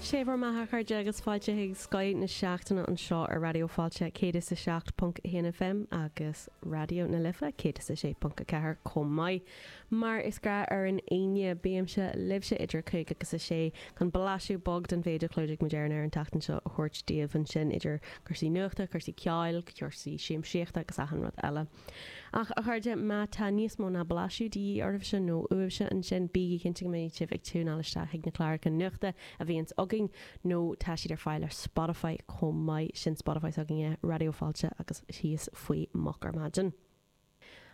Sé bhur mbeatha, a chairde, agus fáilte chuig Scoth na Seachtaine anseo ar Raidió Fáilte 107.1 FM agus Raidió na Life 106.4 chomh maith. Mar is gnách ar an Aoine, bímse libhse idir a cúig agus a sé chun blaiseadh beag den mhéid a chlúdaigh muid ar an aer an tseachtain seo a thabhairt daoibh ansin idir cúrsaí nuachta, cúrsaí ceoil, cúrsaí siamsaíochta agus achan rud eile. Ach, a chairde, má tá níos mó ná blaiseadh de dhíth oraibhse, nó uaibhse, ansin, bígí cinnte go mbeidh sibh ag tiúineáil isteach chuig na cláracha nuachta a bhíonns againn, nó tá siad ar fáil ar Spotify chomh maith, sin Spotify s'againne, Raidió Fáilte agus Thíos Faoi Moch ar Maidin.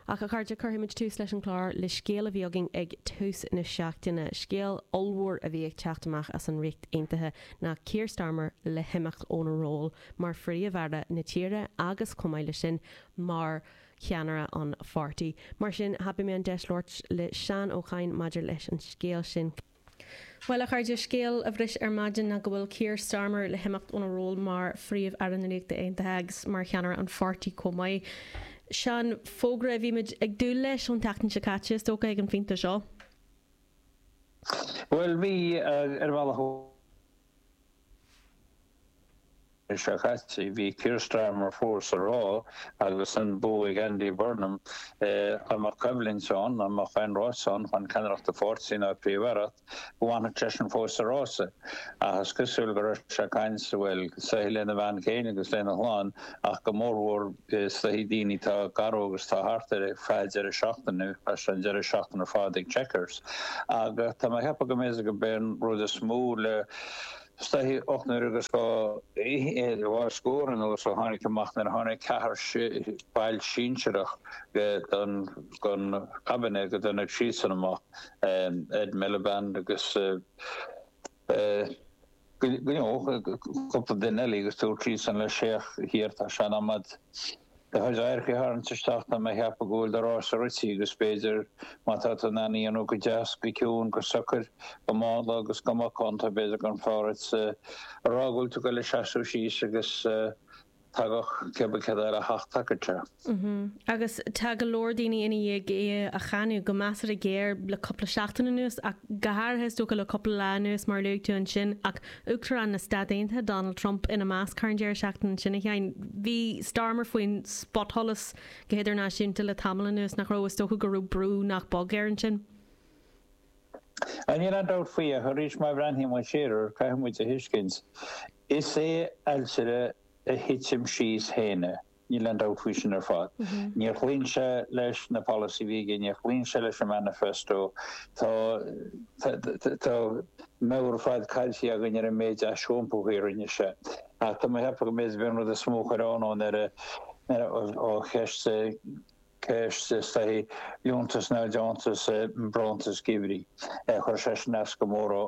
Ach, a chairde, cuirfidh muid tús leis an chlár le scéal a bhí againn ag tús na seachtaine, scéal ollmhór a bhí ag teacht amach as an Ríocht Aontaithe ná Keir Starmer le himeacht óna ról mar phríomh-aire na tíre agus, chomh maith leis sin, mar cheannaire an pháirtí. Mar sin, thapaigh mé an deis labhairt le Seán Ó Cadhain maidir leis an scéal sin. Bhuel, a chairde, scéal a bhris ar maidin ná go bhfuil Keir Starmer le himeacht óna ról mar Phríomh-Aire na Ríochta Aontaithe agus mar cheannaire an pháirtí chomh maith. Seán, fógra a bhí muid ag dúil leis ón tseachtain seo caite, is dócha, ag an phointe seo. Bhuel, bhí, ar bhealach. An Aoine seo caite, bhí Keir Starmer fós ag rá, agus an bua ag Andy Burnham, dá mbeadh coimhlint ann, dá mbeadh aon rás ann chun ceannaireacht an pháirtí nó an Phríomh-Aireacht, go bhfanfadh seisean fós sa rása. Ach is cosúil go raibh sé ag caint, bhuel, is dóichí lena bhean chéile agus lena chlann ach go mórmhór, Is dóichí daoine atá gar dhó agus atá thart air chaith sé deireadh seachtaine agus tá an deireadh seachtaine ar fad ag Chequers ach tá mé ag ceapadh go mb'é go mb'é an rud is mó le is dóichí ocht n-uaire agus dhá fhichead é ar chor ar nós a tháinig amach nuair a tháinig ceathar ball sinsearach gon gon cabinet go dtáinig siadsan amach Ed Miliband agus Dó nó cúpla duine eile agus dúirt siadsan leis féach, Keir tá sé in am agat do chuid adharc a tharraingt isteach tá mé ag ceapadh go bhfuil do rása rite agus b'fhéidir má tá tú in ann é a dhéanamh go deas, go ciúin, go socair, go mánla agus go macánta b'fhéidir gurbh fhearr dhuit a rá go bhfuil tú ag goil ag seasamh síos agus. Tagadh Quebecer ar a hAthtacaithe. Agus tá go leor daoine ina dhiaidh é a cháineadh, go measartha géar, le cúpla seachtain anuas, ach go háirithe, is dócha, le cúpla lá anuas, mar a luaigh tú ansin, ach Uachtarán na Stáit Aontaithe, Donald Trump, ina measc, thar an deireadh seachtaine ansin, a Sheáin. Bhí Starmer faoin spotsholas go hidirnáisiúnta le tamall anuas, nach raibh? Is dócha go raibh brú nach beag air ansin. Níl aon dabht faoi ach arís má bhreathnaíonn muid siar air caithfidh muid a thuiscint is é ailtire a thitim síos féin é. Níl aon dabht faoi sin ar fad. Níor chlaon sé leis na polasaithe a bhí aige, níor chlaon sé leis an manifesto. Tá tá comhaireamh ar fad caillte againn ar an méid aisiompaithe a rinne sé. Ach tá mé ag ceapadh go mb'fhéidir gurb é an rud is mó a chuir ionadh air ó cheist ceist, is dóigh, liúntas nó deontas nó bronntanas geimhridh. Chuir sé sin as go mór dhó,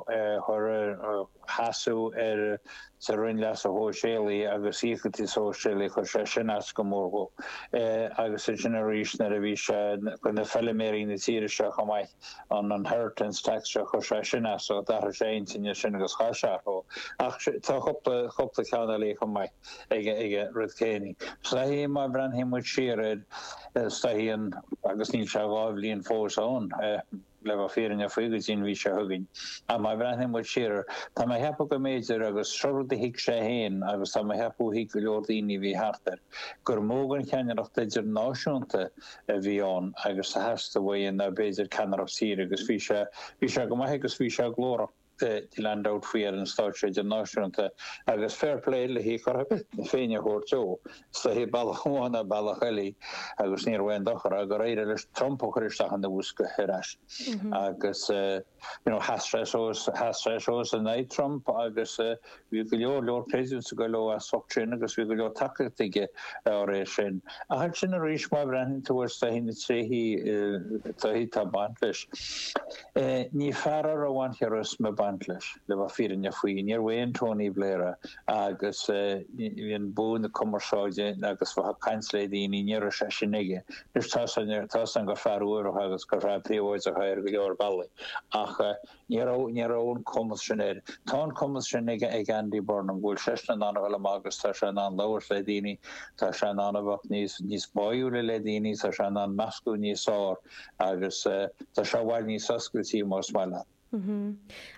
cur ar sheasamh ar sa Roinn Leasa Shóisialaí agus Íocaíochtaí Sóisialaí, chuir sé sin as go mór dhó. Agus ansin arís nuair a bhí sé go na feiliméaraí na tíre seo chomh maith, an inheritance tax seo, chuir sé sin as dhó, d'athraigh sé a intinn ansin agus chaith sé orthu. Ach tá cúpla, cúpla ceann eile chomh maith. aige rud céanna. Ach sé an chaoi, má bhreathnaíonn muid siar air, sé an chaoi an, agus níl sé dhá bhliain fós ann, le bheith fírinneach faoi go dtí an mhí seo chugainn, ach má bhreathnaíonn muid siar air, tá mé ag ceapadh go mb'fhéidir, agus seo rud a thuig sé féin agus tá mé ag ceapadh a thuig go leor daoine a bhí thart air, gur mó den cheannaireacht idirnáisiúnta a bhí ann agus a theastaigh uaidh ná b'fhéidir ceannaireacht tíre agus bhí sé, bhí sé go maith agus bhí sé glórach. níl aon dabht faoi ar an stáitse idirnáisiúnta agus fair play, lena cheart féin a thabhairt dó, is dóigh bealach amháin nó bealach eile agus ní raibh aon dochar ach gur éirigh leis Trump a chur isteach ina bhosca ar ais agus sheas sé suas in aghaidh Trump agus Bhí go leor leor pléisiúr ag go leor as ucht sin agus bhí go leor tacaíochta aige dá réir sin. Ach ansin arís má bhreathnaíonn tú ar, is dóigh, na tréithe atá ag baint leis. Ní fear a raibh an charisma ag baint leis, le bheith fírinneach faoi. Níorbh aon Tony Blair é. Agus an bua na cumarsáide agus bheith ag caint le daoine, ní raibh sé sin aige. Anois tá seans ann, tá seans gur fear umhal agus gur fear príobháideach é ar go leor bealaí. Ach Ní raibh, ní raibh an cumas sin aige. Tá an cumas sin ag, ag Andy Burnham, go bhfuil seisean in ann a dhul amach agus tá sé in ann labhairt le daoine, tá sé in ann a bheith níos, níos báúla le daoine, tá sé in ann meascadh níos fearr agus tá sé i bhfad níos oscailte más maith leat.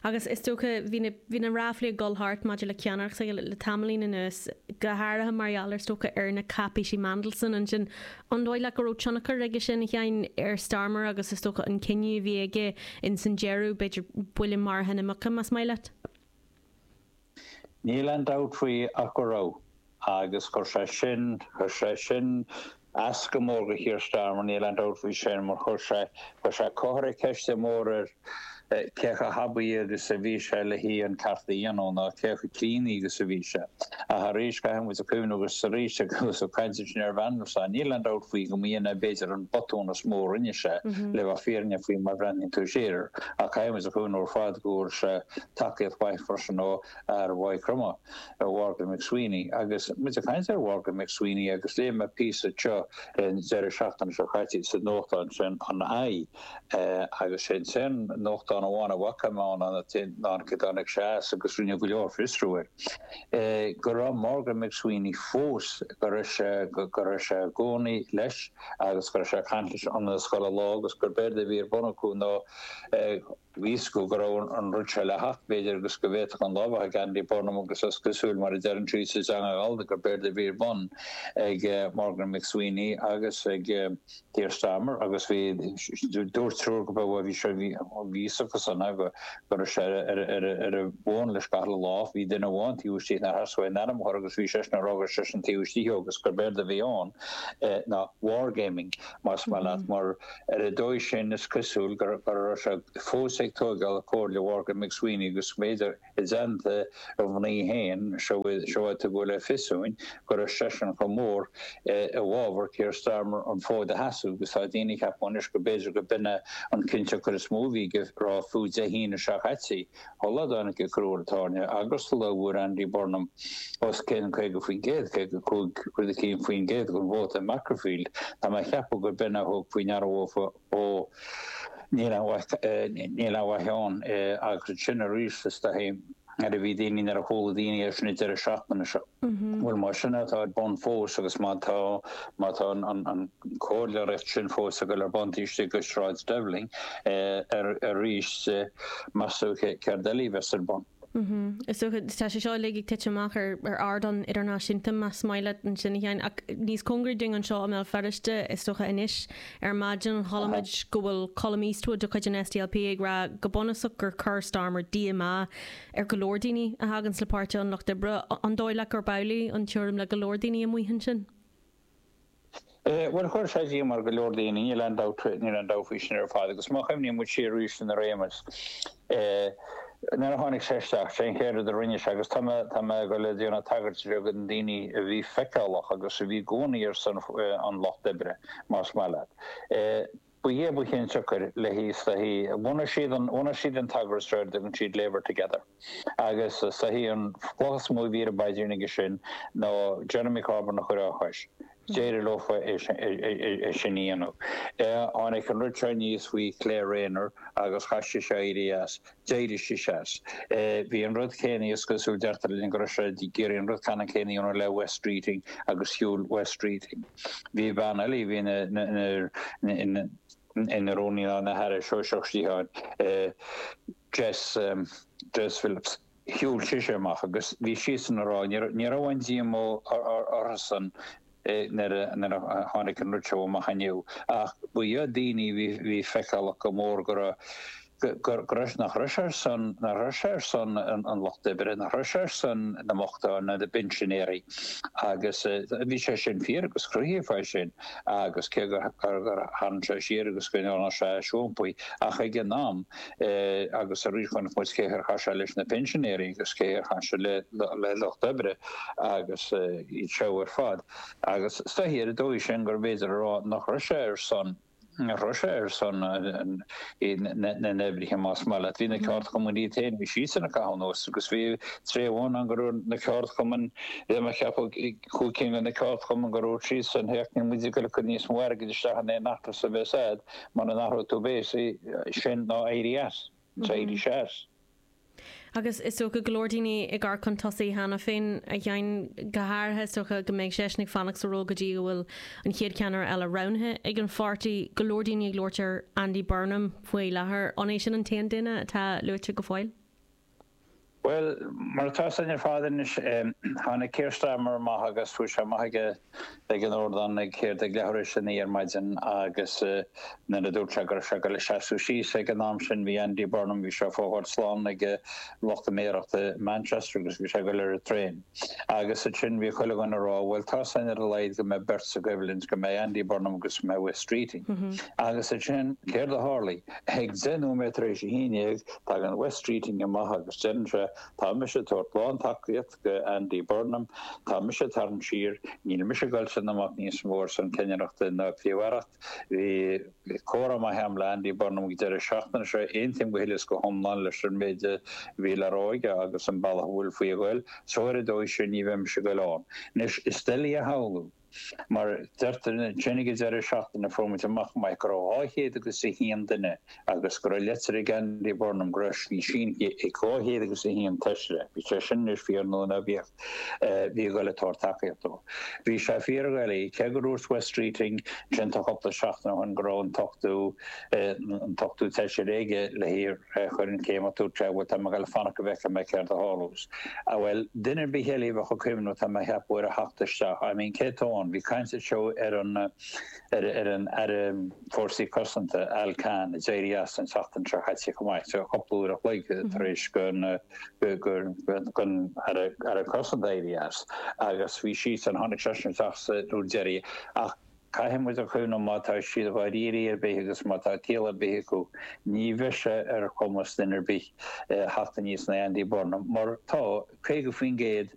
Agus is dócha, bhí na, bhí na ráflaí ag dul thart maidir le ceannaireacht le tamaillín anuas, go háirithe mar gheall ar is dócha ar na cáipéisí Mandelson ansin An dóigh leat go raibh tionchar aige sin, a Sheáin, ar Starmer agus is dócha an cinneadh a bhí aige ins an deireadh, b'fhéidir, buille maraithe na muice, más maith leat? Níl aon dabht faoi ach go raibh. Agus chuir sé sin, chuir sé sin as go mór do Keir Starmer, níl aon dabht faoi sin, mar chuir sé, chuir sé, chuir sé ceist mhór ar, cé chomh haibí agus a bhí sé le haghaidh an ceart a dhéanamh ná cé chomh críonna agus a bhí sé. Ach arís, caithfidh muid a chuimhneamh agus arís eile go raibh caint ansin ar Mhandelson. Níl aon dabht faoi go mb'in é b'fhéidir an botún is mó a rinne sé, le bheith fírinneach faoi mar a bhreathnaíonn tú siar air. Ach caithfidh muid a chuimhneamh ar fad go bhfuair sé tacaíocht mhaith freisin ó fhear Mhaigh Chromtha, Mhorgan McSweeney. Agus muid ag caint ar Mhorgan McSweeney agus léigh mé píosa teo an deireadh seachtaine seo caite sa nuachtán sin an i, Agus sin an t-aon nuachtán amháin a bhfaca mé ann an tseachtain go dtáinig sé as agus rinneadh go leor fiosrú air, go raibh Morgan McSweeney fós, go raibh sé, go raibh sé i gcónaí leis agus go raibh sé ag caint leis ionann is chuile lá agus gurb éard a bhí ar bun acu ná bhí a fhios go go raibh an rud seo le theacht, b'fhéidir, agus go bhféadfadh an lá a bheith ag Andy Burnham agus is cosúil, mar a deireann sí sa teanga ghallda, gur b'éard a bhí ar bun ag Morgan McSweeney agus ag Keir Starmer agus bhí dúirt triúr go raibh bhí sé bhí a fhios acusan a go go raibh sé ar ar bun le scaitheamh lá bhí duine amháin taobh istigh na has way ainm chur agus bhí seisean a rá gur seisean taobh istigh agus gur b'éard a bhí ann ná wargaming más maith leat mar Ar an dóigh sin, is cosúil go raibh sé fós ag tóigeáil comhairle Mhorgan McSweeney agus b'fhéidir i dteannta a mhnaoi féin seo a tugadh le fios dúinn go raibh seisean chomh mór i bhfabhar Keir Starmer an fód a sheasamh agus tá daoine ag ceapadh anois go mb'fhéidir go mb'in é an cinnteacht gur is mó a bhí ag rá fiú Dé hAoine seo caite. Sula dtáinig an crú ar an tairne, agus sula bhfuair Andy Burnham os cionn 50%, 55 rud eicínt faoin gcéad, den vóta i Makerfield, tá mé ag ceapadh gurb in a thug faoi ndeara dóibh ó níl aon mhaith níl aon mhaith ann agus ansin arís is dóichí nuair a bhí daoine nuair a chuala daoine é sin ag deireadh seachtaine seo. Bhuel, más in é atá ar bun fós agus má tá, má tá an comhairleoireacht sin fós ag dul ar bun taobh istigh de Shráid Downing arís, más dócha, céard eile a bheas ar bun? Is dócha, tá sé seo uilig ag titim amach ar ardán idirnáisiúnta, más maith leat ansin a Sheáin, ach níos cóngaraí dúinn anseo i mBéal Feirste is dócha anois. Ar maidin chuala muid go bhfuil Colum Eastwood de chuid an SDLP ag rá go bunúsach gur chuir Starmer díomá, ar go leor daoine a thaganns le Páirtí an Lucht Oibre, an dóigh leat gurb amhlaidh an tuairim le go leor daoine amuigh ansin? Bhuel, chuir sé díomá ar go leor daoine, níl aon dabht, níl aon dabht faoi sin ar fad agus má chuimhníonn muid siar arís ar an réimeas, nuair a tháinig sé isteach, sé an chéad rud a rinne sé agus tá mé, tá mé ag déanamh tagairt bheag do na daoine a bhí feiceálach agus a bhí i gcónaí ar son an lucht oibre más maith leat. Ba é ba chionsiocair leis, sé an chaoi bhunaigh siad, bhunaigh siad an t-eagras seo ar a dtugann siad Labour Together agus sé an chaoi an chloch is mó a bhí ar a bpaidrín acu sin ná Jeremy Corbyn a chur dá chois. D'éirigh leo é sin a dhéanamh. Tháinig an rud seo aníos faoi Claire Rayner agus chaith sise éirí as. D'éirigh sí as. Bhí an rud céanna, is cosúil, deirtear linn go raibh sé ag iarraidh an rud ceannann céanna a dhéanamh le Wes Streeting agus shiúil Wes Streeting. Bhí bean eile a bhí ina, ina, ina rúnaí nó ina haire sóisearach stáit, Jess, Jess Phillips, shiúil sise amach agus bhí siadsan ag rá, ní raibh, ní raibh aon díomá orthusan nuair a tháinig an rud seo amach inniu, ach ba iad daoine a bhí feiceálach go mór go raibh, go raibh, nach raibh sé ar son, nach raibh sé ar son an lucht oibre, nach raibh sé ar son na mbochtán ná na bpinsinéirí agus bhí sé sin fíor agus cruthaíodh é sin agus cé gur tharraing sé siar agus go ndearna sé somplaí ach ag an am, agus arís chonaic muid céard a tharla leis na pinsinéirí agus céard a tharla le lucht oibre agus iad seo ar fad. Agus is dóigh ar an dóigh sin gurbh fhéidir a rá nach raibh sé ar son, nach raibh sé ar son na n-oibrithe más maith leat. Bhí na ceardchumainn iad féin, bhí siadsan ag caitheamh anuas agus bhí tréith amháin ann go raibh na ceardchumainn, bhí mé ag ceapadh, Cúig cinn de na ceardchumainn go raibh siadsan ag ceapadh ní móide go gcuirfeadh níos mó airgid isteach in aon fheachtas a bheadh ann mura n-athródh tú béas é sin nó éirí as. D'éirigh sé as. Agus is dócha go leor daoine á gcur chun tosaigh cheana féin a Sheáin, go háirithe is dócha go mbeidh seisean ag fanacht sa ról go dtí go bhfuil an chéad cheannaire eile roghnaithe ag an pháirtí. Go leor daoine ag labhairt ar Andy Burnham faoi láthair. An é sin an t-aon duine atá luaite go fóill? Bhuel, mar atá san ar fad anois, tháinig Keir Starmer amach agus sheas sé amach aige ag an ardán ag céard ag leathuair tar éis a naoi ar maidin agus nuair a dúirt sé go raibh sé ag dul ag seasamh síos ag an am sin bhí Andy Burnham, bhí sé ag fágáil slán ag lucht a méarachta i Manchester agus bhí sé ag dul ar an traein agus ansin bhí chuile dhuine ag rá bhuel tá seans ar a laghad go mbeidh beirt sa gcoimhlint, go mbeidh Andy Burnham agus go mbeidh Wes Streeting agus ansin céard a tharla? Ag deich nóiméad tar éis a haon dhéag, tagann Wes Streeting amach agus deireann sé, Tá mise ag tabhairt lántacaíocht dho Andy Burnham. Tá mise ag tarraingt siar. Níl mise ag dul ag seasamh amach níos mó ar son ceannaireachta ná cléireachta. Bhí comhrá maith agam le Andy Burnham ag an deireadh seachtaine seo. Aontaím go huile is go hiomlán leis an méid a bhí le rá aige agus an bealach a bhfuil faoi a ghoil. Só ar an dóigh sin ní bheidh mise ag goil ann. Anois, is doiligh a shamhlú. Mar a deir tú ansin ag deireadh seachtaine a fuair muid amach maith go raibh dhá chéad agus a haon duine agus go raibh leitir ag Andy Burnham go raibh sí sínithe ag dhá chéad agus a haon feisire. Bíodh sé sin anois fíor nó ná bíodh, bhí ag dul ag tabhairt tacaíocht dó. Bhí sé fíor dhoiligh, cé go ndúirt Wes Streeting ansin tá cúpla seachtain ó shin go raibh an t-ochtó, an t-ochtó feisire aige le hé a chur an chéim orthu, Tréith a bhfuil Tá mé le fanacht go bhfeicfidh mé céard a tharlós. a bhuel, duine ar bith eile a bheadh ag cuimhneamh nó tá mé a cheapadh ar a theacht isteach I mean cé tá ann? Bhí caint anseo ar an ar ar an Aire Fórsaí Cosanta, Al Carns, a d'éirigh as an seachtain seo chaite chomh maith, so cupla uair a chloig tar éis gon Aire Cosanta éirí as agus bhí seisean tháinig seisean isteach sa dúr deirí ach Caithfidh muid a chuimhneamh má tá siad dháiríre ar bith agus má tá ciall ar bith acu, ní bheidh sé ar chumas duine ar bith theacht aníos ná Andy Burnham, mar tá 50%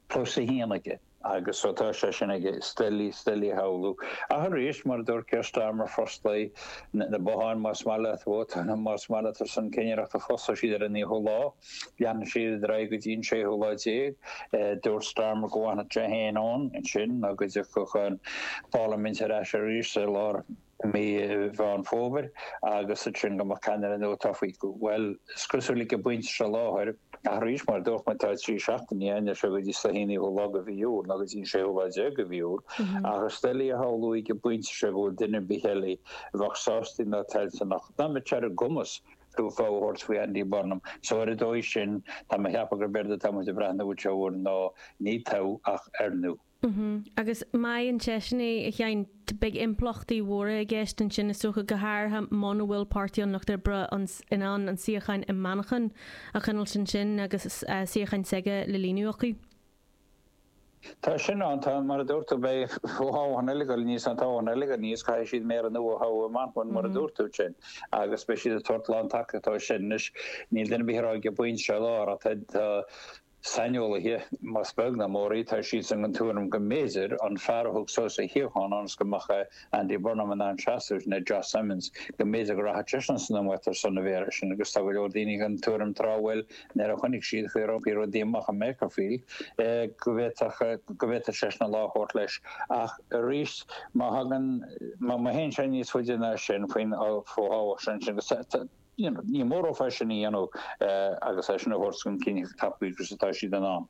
plus 1 aige. Agus ó tá sé sin aige, is doiligh, is doiligh a shamhlú. Ach arís, mar a dúirt Keir Starmer, fosclóidh na botháin más maith leat, vótáil más maith leat ar son cinnireachta, fosclóidh siad ar an 9ú lá. Leanann siad ar aghaidh go dtí an séú lá déag. Dúirt Starmer go bhfanfadh sé féin ann ansin nó go dtiocfadh an pharlaimint ar ais arís i lár mhí Mheán Fómhair agus ansin go mbeadh ceannaire nua tofa. Bhuel, is cosúil ag an bpointe seo i láthair, ach arís mar a dúirt mé tá trí seachtaine ann anois go dtí an naoú lá de mhí Iúil nó go dtí an séú lá déag de mhí Iúil, ach is doiligh a shamhlú ag an bpointe seo go bhfuil duine ar bith eile a bheadh sásta ná toilteanach, ná a mbeadh sé ar a gcumas, tú fogha a thabhairt faoi Andy Burnham. So ar an dóigh sin, tá mé a cheapadh gurb éard atá muid ag breathnú uaidh seo air ná ní toghadh ach oirniú. Mm-hmm. Agus má fhaigheann seisean é, a Sheáin, beidh impleachtaí mhóra i gceist ansin is dócha, go háirithe muna bhfuil Páirtí an Lucht Oibre an, in ann an suíochán i Manchain a choinneáilt ansin agus suíochán s'aige le líonadh acu. Tá sin ann, tá. Mar a dúirt tú, beidh fothoghchán eile ag goil anois ann, toghchán eile ag goil anois, caithfidh siad méara nua a thoghadh i Manchain, mar a dúirt tú ansin, agus beidh siad ag tabhairt lántacaíocht dó sin. Anois, níl duine ar bith a rá ag an bpointe seo i láthair, ach tá saineolaithe, más beag ná mór í, tá siad den tuairim go mb'fhéidir, an fear a thug suas a shuíochán ionas go mbeadh a. Andy Burnham in ann seasamh, ná Josh Simons, go mb'fhéidir go rachadh seisean san iomaíocht ar son an mhéara sin agus tá go leor daoine den tuairim tráth, bhuel, nuair a chonaic siad an chaoi ar oibrigh rudaí amach i Makerfield go bhféadfadh go bhféadfadh seisean an lá a thabhairt leis ach arís má thagann má théann sé níos faide ná sin faoin bhfothoghchán sin agus Ní mór dóibh é sin a dhéanamh agus é sin a thabhairt chun cinn chomh tapa agus atá siad in ann.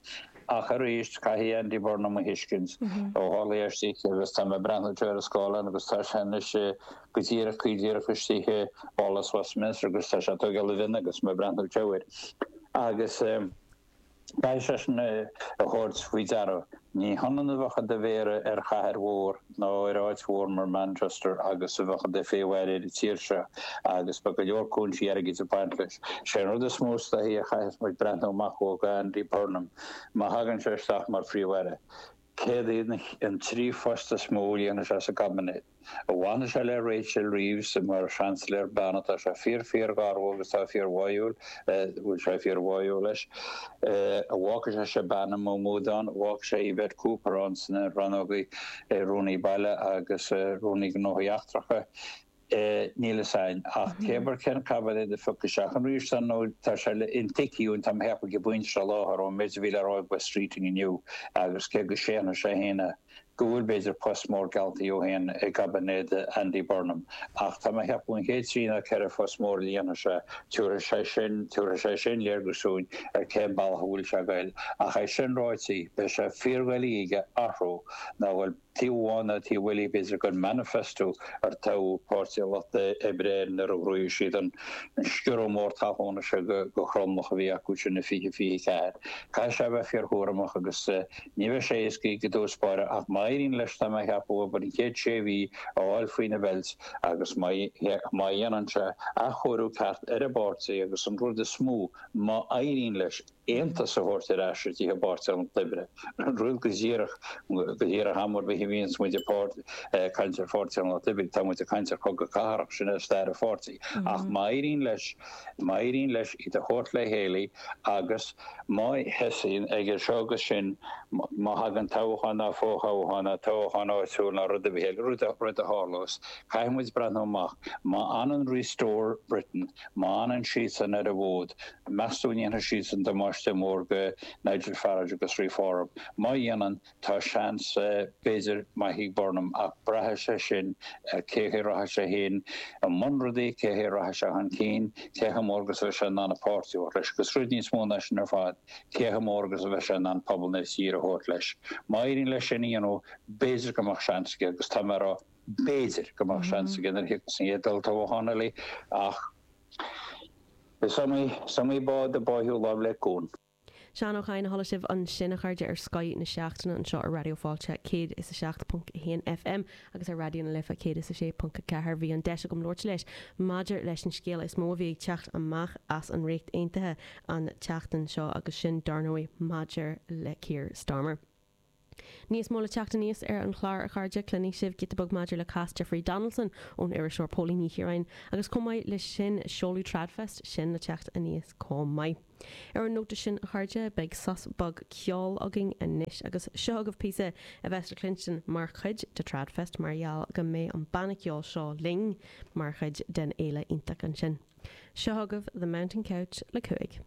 Ach arís, caithfidh Andy Burnham a thuiscint. Ó tharla é istigh agus tá mé ag breathnú air ar an scáileán agus tá sé anois go díreach go díreach istigh i bPálas Westminster agus tá sé ag tógáil a mhionn agus mé ag breathnú air agus Caithfidh seisean é a thabhairt faoi deara. Ní hionann a bheith i do mhéara ar chathair mhór nó ar áit mhór mar Manchester agus a bheith i do Phríomh-Aire ar an tír seo agus beidh go leor cúinsí airgid ag baint leis. Is é an rud is mó is dóichí a chaithfeas muid breathnú amach dó ag Andy Burnham má thagann sé isteach mar Phríomh-Aire. Céard iad an trí phost is mó a líonfaidh sé sa gcaibinéad? an bhfanfaidh sé le Rachel Reeves mar Sheansailéir bean atá sé fíor fíor ghar dhó agus tá fíor bháúil bhfuil sé fíor bháúil leis an bhfágfaidh sé Shabana Mahmood ann an bhfágfaidh sé Yvette Cooper ann sna rannóga Rúnaí Baile agus Rúnaí Gnóthaí Eachtracha Níl fhios a'inn ach céard cén caibinéad a thiocfaidh isteach an riamh san nó tá sé le intuigthe uainn tá mo theacht ag baint seo láthair ón méid a bhí le rá ag Wes Streeting inniu agus cé go séanfaidh sé féin é go bhfuil, b'fhéidir, post mór geallta dhó féin i gcaibinéad Andy Burnham. Ach tá mé ag ceapadh an chéad trí nó ceithre phost mór a líonfaidh sé, tiúrfaidh sé sin, tiúrfaidh sé sin léargas dúinn ar cén bealach a bhfuil sé ag goil. Ach é sin ráití, beidh sé fíordhoiligh aige athrú ná a ghoil taobh amháin ná taobh eile, b'fhéidir, den manifesto ar toghadh Páirtí an Lucht Oibre air nuair a ghnóthaigh siad an sciorradh mór talúna seo go thromlach a bhí acu sin i 2024. Caithfidh sé a bheith fíorchúramach agus. Ní bheidh sé éasca aige i dtús báire ach má éiríonn leis tá mé a cheapadh abair an chéad sé mhí a fháil faoina bheilt agus má dhéanann sé athchóiriú ceart ar an bpáirtí agus an rud is mó, má éiríonn leis aontas a thabhairt ar ais istigh i bPáirtí an Lucht Oibre, rud go díreach, go díreach am ar bith a bhíonns muid ag caint ar Pháirtí an Lucht Oibre tá muid ag caint ar chogadh cathartha, sin é stair an pháirtí, ach má éiríonn leis. Má éiríonn leis iad a thabhairt le chéile agus má sheasaíonn aige seo agus sin, má thagann toghchán ná fo-thoghchán ná toghchán áitiúil ná rud ar bith eile, rud a tharlós, caithfidh muid breathnú amach, má fhanann Restore Britain, má fhanann siadsan ar an bhfód, meastú an ndéanfaidh siadsan damáiste mór go Nigel Farage agus Reform? Má dhéanann, Tá seans, b'fhéidir, maith ag Burnham, ach braithfidh sé sin ar cén chaoi a rachaidh sé féin i mbun rudaí, cén chaoi a rachaidh sé chun cinn, cé chomh mór agus a bheidh sé in ann an páirtí a thabhairt leis, agus rud níos mó ná sin ar fad, cé chomh mór agus a bheidh sé in ann pobal na tíre a thabhairt leis. Má éiríonn leis sin a dhéanamh, b'fhéidir go mbeadh seans aige, agus tá mé ag rá b'fhéidir go mbeadh seans aige nuair a thiocfas an chéad olltoghchán eile, ach is iomaí bád a báitheadh láimh le cuan. Seán Ó Cadhain a chuala sibh ansin, a chairde, ar Scoth na Seachtaine anseo ar Raidió Fáilte 107.1 FM agus ar Raidió na Life 106.4. Bhí an deis agam labhairt leis maidir leis an scéala is mó a bhí ag teacht amach as an Ríocht Aontaithe an tseachtain seo agus sin, dar ndóigh, maidir le Keir Starmer. Níos mó le teacht aníos ar an chlár a chairde, cluinfidh sibh giota beag maidir le cás Jeffrey Donaldson ón iriseoir Póilín Ní Chiaráin agus chomh maith leis sin seoladh Tradfest, sin le teacht aníos chomh maith. Ar an nóta sin a chairde, beidh sos beag ceoil againn anois agus seo chugaibh píosa a bheas le cluinstin mar chuid de Tradfest mar gheall go mbeidh an banna ceoil seo linn mar chuid den fhéile iontach ansin. Seo chugaibh The Mountain Couch le 5.